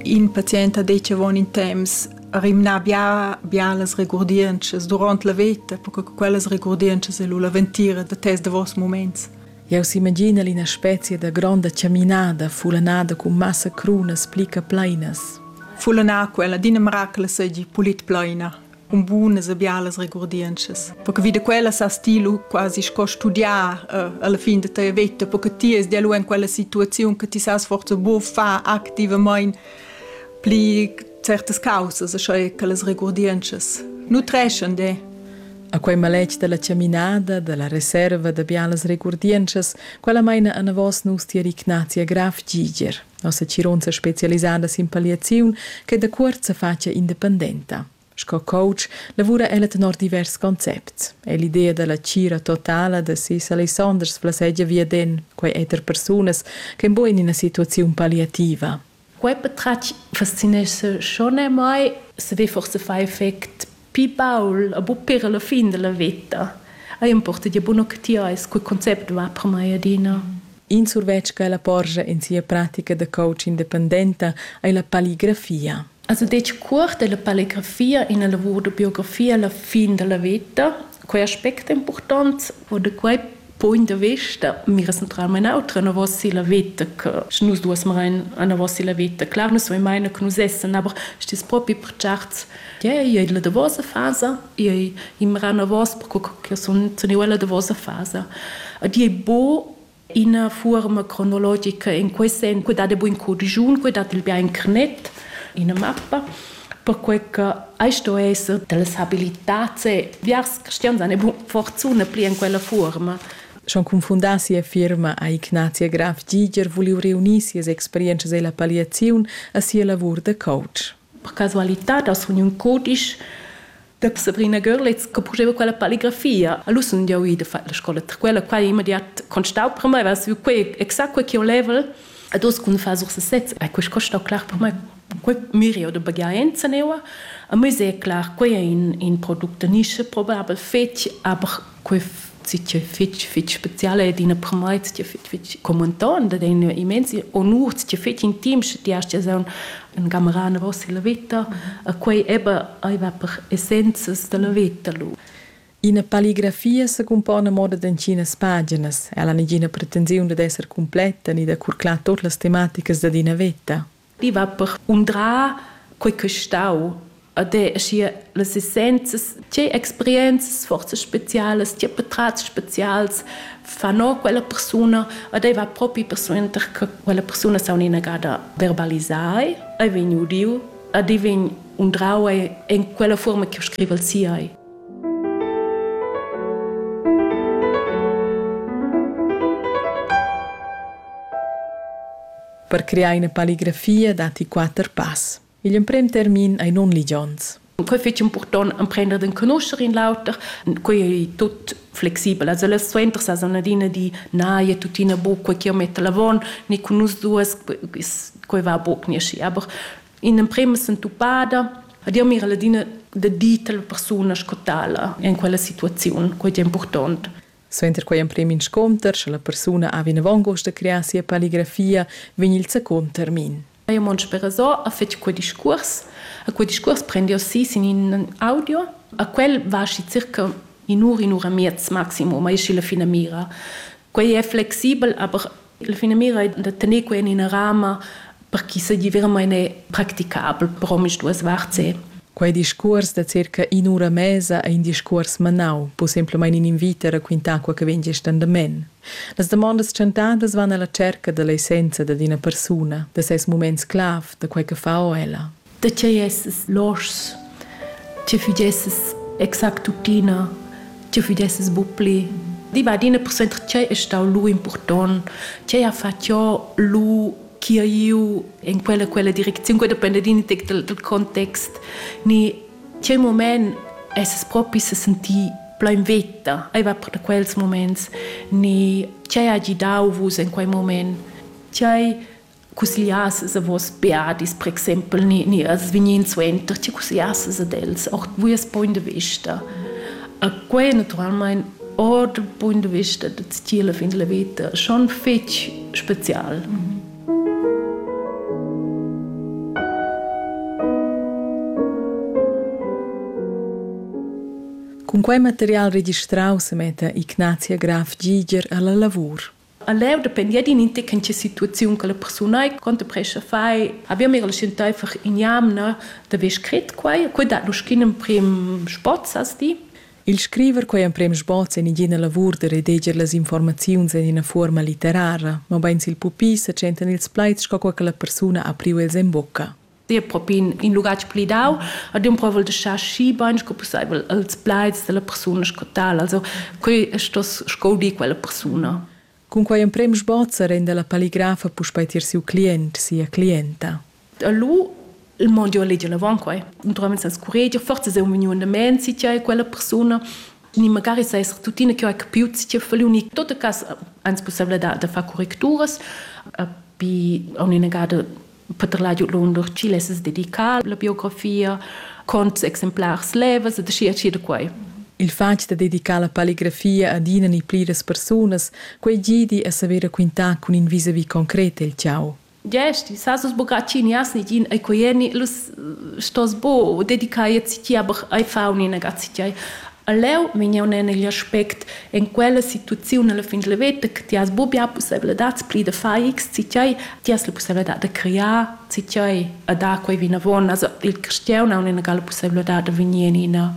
In patient ha detg avon in temps rimnà bia, bia las regurdientschas durant la veta, perche quellas regurdientschas è lu la ventira da tes davos muments. Jau s'imagina ina spezia da gronda chaminada, fulanada cun massa crunas pli che plainas. Fulanar quella d'ina miracle seigi pulit plaina. un bunas e bialas regurdientschas. Perché vi da quella sa stilu quasi sco studiar uh, alla fin da tua vita, perché ti es dialu in quella situaziun che ti sa forza bu fa activament pli certas causas, sche che las regurdientschas nutreschan de. A quei maletg della ciaminada, della reserva da bialas regurdientschas, quella meina anavos nus ti Ignazia Graf Giger. Nossa tgironza spezialisada sin palliaziun che da cuort sa facia independenta. Sco coach lavura ella tenor divers concepts. È l'idea dalla tgira totala da sis Alessanders flassegia viaden quei eter persunas ch'en buc en ina situaziun palliativa. Quei patratg fascinescha schon a mei. Sche forsa fai effect Pi baul e buc pir alla fin dalla veta ei emporta gia bun octiais cul concept va per mei adina. In survetsch ch'ella porscha en sia pratica da coach independenta ei la palligrafia. Also detg cuort è la palligrafia ina lavur da biografia alla fin dalla veta. Quei aspect è impurtont, wo de quei Point da vista, mi recentrarem en autra anavos si la veta che sche nus duas marein anavos si la veta. Clar, nus vein meine che nus essan, aber stis propi per certs. Yeah, io ei la davosa fasa, io ei immer anavos perché che sun sun io la davosa fasa. Ed ei bo ina forma cronologica in quei sen, quei dat buin codigiun, quei dat il bia internet, ina mappa. perquei che ei sto esser dallas habilitats e biars cristians han bu fortuna pli en quella fuorma. Schon confundar sia firma ha Ignazia Graf Giger vuliu reunir sias experientschas ella palliaziun a sia lavur da coach. Per casualitad ha suniu in cudisch da Sabrina Görlitz che purteva quella palligrafia. A lui sun jau ì da far la scola, per quella quai immediat constau per mai, va su quei exact quei che ho level. Ad os cun far sur sesez, e quest costau clar per mai quei mirio de bagaenza neua. A me è clar, quei è in, in product da nische probabel fetg, aber questa fitg fitg speziale ed ina promait ti fitg fitg commentan da den immensi onur ti fitg intim sche ti hast ja un gamarana vossa la vita a quei eba ai va per essenzas della vita lu Ina palligrafia se compone a moda d'entginas paginas. Ella ha negina pretensiun dad esser completa ni da curclar tot las tematicas dad ina veta. I va per undrar quei ch'ei stau ad è, aschia las essenzias, tgei experienzas, forzas specialas, tgei patratgs specials fa no quella persuna, ad ei va propi persuenter che quella persuna s'ha un'inagada verbalisai, ei vegn udiu ad ei vegn undrau en quella fuorma ch'jeu scrivel si ei. per crear ina palligrafia datti quatter pass. Igl emprem termin ei non ligions. Quei fetg impurtont emprender d'enconoscher in l'auter. Quei ei tut flexibel. Also las suenter sa san adina di na, e tuttina bo quei che metta l'avon, ni cun nus duas, quei va buc ni aschi. Aber in emprema sentupada Dir mira ladina de dir alla persuna sco tala in quella situaziun, quei è important. Suenter quei emprem inscunter, sche la persuna ha vinavon gust da crear sia palligrafia, vegn il secund termin. Mio mond sperasò ha fetg quei discuors, a quei discuors prendiò si sin in audio, a quel va aschi circa in'ura, in'ura miez maximum, ei schi la finamira. Quei è flexibel, aber La finamira è da tener quai en ina rama per ch'i seigi veramain practicabel per omisduas varts. Quei discuors da circa in'ura mesa ei in discuors manau, pusemplamein in invit a raquintar quei che vegn gest endament. Las damondas tschentadas van alla cerca dall'essenza dad ina persuna, da ses muments clav, da quei che fa o ella. da tgei esses loschs, tgei fudesses exact tuttina, tgei fudesses bu pli. I va adina per senter tgei è stau lu impurtont, tgei ha fatg jo lu chi ha iu en quella quella direcziun, quei depende din tec del, del context, ni tgei moment esses propi se sentì plau in veta, ei va per da quels moments, ni tgei ha gidau vus en quei moment, tgei cussgliassas a vos beadis, per exempel, ni, ni als vegnin suenter, ti cussgliassas ad els, auch vues point de vista. A quei naturalmein ord point de vista da stile fin la vita schon fetg spezial. Mm Cun quei material registrau se metta Ignazia Graf Giger alla lavur. A leu dependia d'in'intechentscha situaziun che la persuna ei contemprescha fai. Haver mi enteifer in jamna da ver scret quai. Quei dat lu schin emprim spozzas di. Il scriver quei emprem sboz en igina lavur da redeger las informaziuns en ina fuorma litterara, mobein sil pupi setschentan ils plaids sco quei che la persuna ha priu els en bucca. Dir propi in, in lugatg pli dau, ad un provel de schar schi bein sco pusseivel els plaids della persuna sco tal. Also, quei stos sco di quella persuna. Cunquei emprem sbozzer en dalla palligrafa puspei tier siu client, sia clienta. E lu il mondial leger avon quei. Naturalment senza curegia, forza sei un vegniu andament si e quella persuna ni magari sei tuttina che ho capiu si fali unic tot cas ans possibilità da far correcturas bi un'inegada Peter la giu lun lur chile es dedicar la biografia con exemplars levas et schi da quai. Il fatg da dedicar la palligrafia ad ina ni pliras persunas, quei gidi a saver raquintar cun in visavi concret el tgau. Gesti, sa sus bogaccini as ni gin ai coieni, lus stos bo dedicar tia bar ai fauni nagazzi tiai. A leu vegn jeu en igl aspect en quella situaziun alla fin dalla veta che ti has buca bia pusseivladads pli da far X, tgei ti has la pusseivladad da crear, tgei a dar quei vinavon. Also, il cristian ha un'egala pusseivladad da vegnir en ina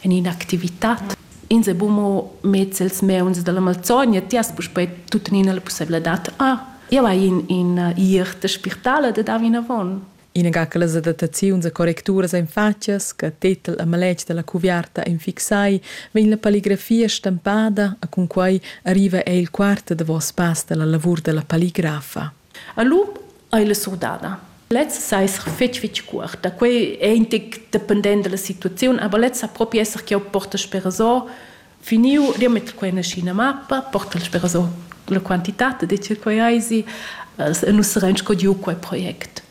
en ina activitat. Ins è buca mo mez els meuns dalla malzogna, ti has puspei tuttenina la pusseivladad, ah, jeu hai in, in uh, iert da spirtala da dar vinavon. Inaga che las adattaziuns e correcturas ein fatgas che tetel e maletg dalla cuviarta ein fixai, vegn la palligrafia stempada e cunquei arriva ei il quart e davos pass dalla lavur dalla palligrafa. A lu ei la surdada. Lez sa esser fetg fetg cuort, da quei ei in tec dependent dalla situaziun, aber lez sa propi esser ch'jeu portesch per resort Finiu riamet quei naschi ina mappa, portal spera so la quantitat de che quei eisi, nus sarein sco giu quei project.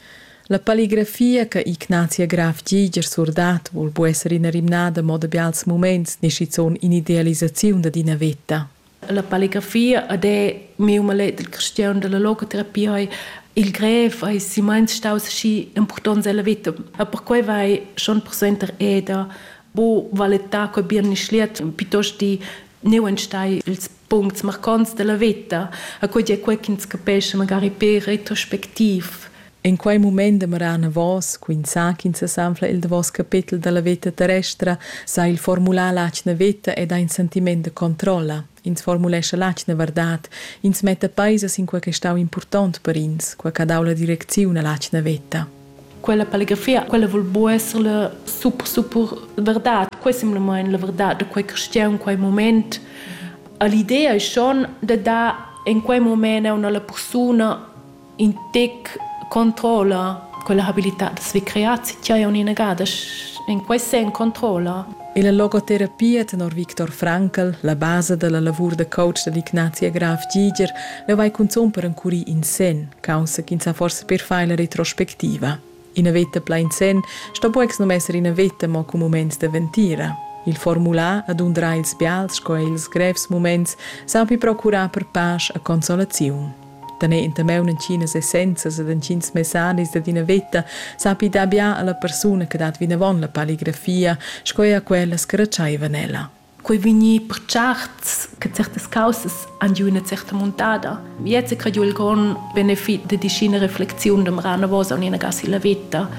La palligrafia che Ignatia Graf Giger surdat vul bu esser ina rimnada mo da bials muments ni schizun in'idealisaziun dad ina veta. La palligrafia ed è miu maletg cristian dalla logoterapia ei il grev ei simeins staus schi impurtonts ella veta. E perquei vai schon persuenter eda Bo valetta co birni schliet piuttost di neu entstai ils puncts marcants della veta, a quei è quei ch'ins capesce magari per retrospectiv. En quei mument demoran vos, quin sa ch'ins sesanfla il davos capetel dalla veta terrestra, sa il formular l'atgna veta ed ha in sentiment de controlla. Ins formulescha l'atgna verdad, ins metta peisas in quei che stau impurtont per ins, quei che ha dau la direcziun all'atgna veta. Quella palegrafia, quella vul buca esser la super, super verdad. Quei è simplamain la verdad da quei cristian, quei moment. L'idea è schon de dar in quei moment a una persona in tec controlla quella habilità, dass wir creat si, tja, un'inegada, in quei sen controlla. Illa logoterapia tenor Victor Francl, la basa da la lavur da coach da l'Ignazia Graf Giger, leu vai cunzun per encurir in sen, caussa ch'ins ha forsa per far la retrospectiva. Ina veta plain sen sto buex num esser ina veta mo cun muments da ventira. Il formular ad undrar ils bials sco er ils grevs muments saupi procurar per pasch e consolaziun. da ne intermeu entginas essenzas ed entgins messanis dad ina veta sapi dar bia alla persuna che dat vinavon la palligrafia sco er quella scretschaivan ella. Quei vegni per certs che certas causas han giu ina certa muntada. Jetzt è credu il grond benefit de dischina reflexiun de Marana Vosa und ina gasi la veta.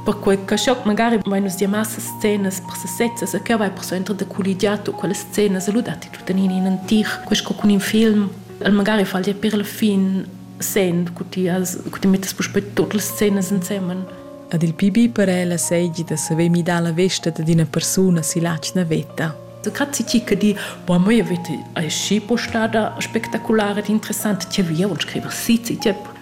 Perché che schoc magari vai nus dir massa scenas per sesezza e che vai per so entra de colligiato quelle scenas e ludati tutto in un antic, questo con un film el magari fal dir per la fin scen cu ti as cu ti mettas puspei tutte le scene insieme Ad il pibi para ella seigi da saver midar la vesta da d'ina persuna si latg navetta. Grazie ti che di, boah, moi vete è schi postada spettacolare ed interessante, ti via und scriva si, ti tiep.